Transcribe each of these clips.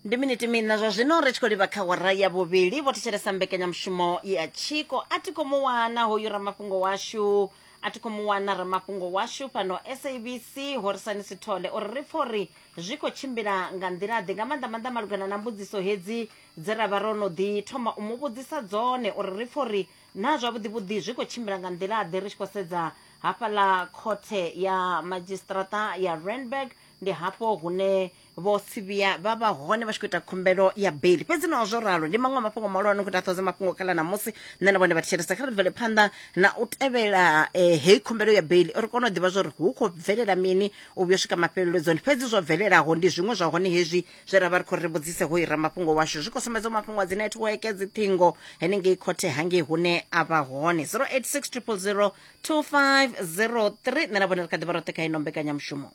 ndi miniti mina zwa zwino ri tshi khou livha kha wara ya vhuvhili vho thetshelesa mbekanyamushumo ya tshiko a ti khou mu wana hoyu ramafhungo washu a ti khou mu wana ramafhungo washu fhano sabc horisani sithole uri ri pfha uri zwi khou tshimbila nga nḓila-ḓe nga maanḓa maanḓa malugana na mbudziso hedzi dze ra vha ro no ḓi thoma u mu vhudzisa dzone uri ri pfha uri na zwavhuḓi vhuḓi zwi khou tshimbila nga nḓila-ḓe ri tshi khou sedza hafhaḽa khothe ya madzhisiṱaraṱa ya randburg ndi hafho hune vho sivhiya vha vha hone vha tshi khou ita khumbelo ya beli fhedzi naho zwo ralo ndi maṅwe a mafhungo mahulwane khou taṱhodza mafhungo khala ṋamusi nṋe na vhone vha thetshelesa kha ri bvele phanḓa na u tevhela eh, heyi khumbelo ya beli uri kone u ḓivha zwa uri hu khou bvelela mini u vhuya u swika mafheleledzoni fhedzi zwo bvelelaho ndi zwiṅwe zwa hone hezwi zwe ra vha ri khou ri vhudzise ho ira mafhungo washu zwi khou sumbedza u mafhungo a dzi netiweke dzi ṱhingo henengei khothe hangei hune a vha hone 086 000 2503 nṋe na vhone ri kha ḓi vha roṱhe kha ino mbekanyamushumo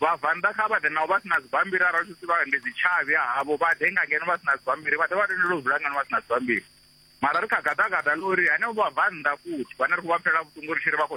Vhabvannḓa kha vha ḓe naho vha si na dzibammbiri arali zwi si vha ndi dzitshavhi ha havho vha ḓe nga ngeno vha si na dzibammbiri vha ḓe vha tendelwe u dzula ngeno vha si na dzibammbiri mara ri kha gaḓagaḓa ḽa uri henevho vhabvannḓa futhi vhane ri khou vha pfela vhuṱungu ri tshi ri vha khou